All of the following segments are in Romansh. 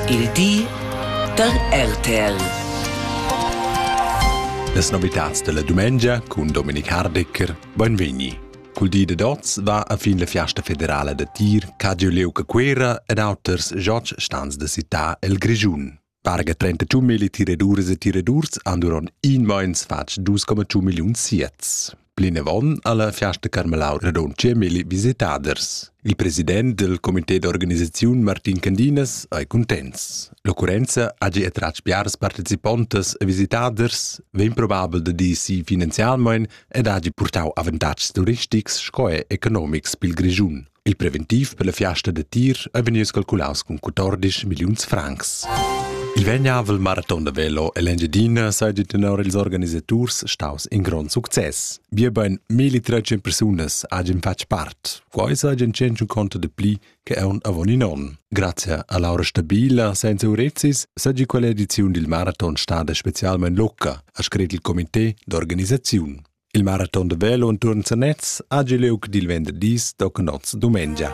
Il di da RTL. Las novitads della dumengia cun Dominik Hardecker, benvegni. Cul di dad oz va a fin la fiasta federala da tir Cadio Leu Cuera ed auters jocs stans da città el Grischun. Parga 32 mili tiradurs e tiradurs han durant in meins fatg 2,2 milliun siets. Plinavon ha la Fiasta Carmelau radund 10 mili visitaders. Il president del comité d'organisaziun Martin Candinas ei contents. L'occurrenza hagi attratg biars participontas e visitaders, vegn probabel da dir si finanzialmein ed hagi purtau avantatgs turistics sco e economics pil Grischun. Il preventiv per la fiasta da tir è vegnius calculaus cun 14 milliuns francs. Il vegnavel maraton da velo ell'Engiadina seigi tenor ils organisaturs staus in grond success. Biebein 1300 persunas hagien fatg part. Quei seigien tschentun conto de pli che aun avon in onn. Grazie a Laura Stabila senza Urezis seigi quella ediziun dil maraton stada specialmein locca, ha scret il comité d'organisaziun. Il maraton de velo enturn Sanez ha giu liug dil venderdis docnots dumengia.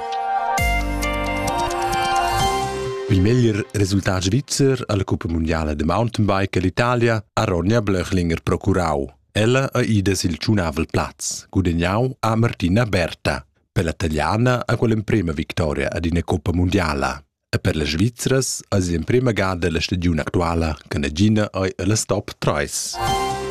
Il meglier resultat svizzer alla Cuppa Mondiale de Mountainbike all'Italia ha Ronja Blöchlinger procurau. Ella ha ida sil tschunavel plaz, gudegnau a Martina Berta. Per la taliana ha quella emprema victoria ad ina Coppa Mondiala. E per las Svizras eis l'emprema gada la stagiun actuala che nagina ei ella stop 3.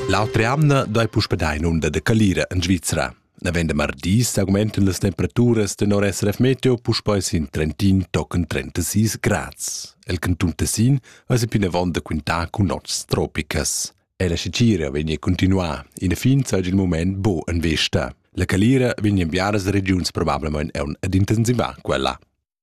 L'autra jamna dai puspedai in unda de calira en Svizra. Navend de mardi s'augmenten las temperaturas tenor SRF Meteo puspei sin Trentin tochen 36 grads. El canton Tessin eis plinavon da quintar cun nots tropicas. E la scicira vegni continuar. In fin sei il moment bo en vesta. La calira vegni en biaras regiuns probablemente ad intensivar quella.